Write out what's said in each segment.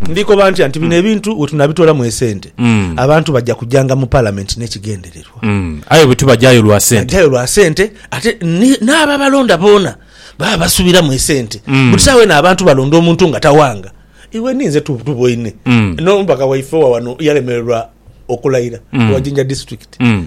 Ndi koba ntya nti bino ebintu we tunabitoolamu esente, mm. abantu bajja kujanga mu palamenti n'ekigendererwa. Mm. Aye bwe tubajayo lwa sente. Bajayo lwa sente ate n'ababalonda boona baba basubiramu esente. Mm. Buti saawa eno abantu balonda omuntu nga tawanga. Iwe ninze tuboine. Mm. N'omubaka waife wa wano yalemererwa okulayira mm. wa Jinja district. Mm.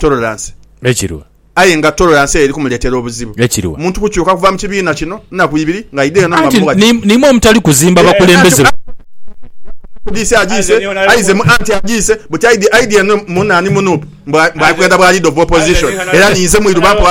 Tolerance. Ekirwa. Aye nga tolerance eyo eri kumuletera obuzibu. Ekirwa. Omuntu kukyuka kuva mu kibiina kino naku ibiri nga aidheyo no nga Anti mughaji. ni- nimwo omutali kuzimba Eh, bakulembeze. anti- Kudisi agiise, aize mu anti agiise buti aidhi aidhi eno mu nani mu nup mbu a- mbu ali kwenda bwa leader of opposition era ninze mwiru bampa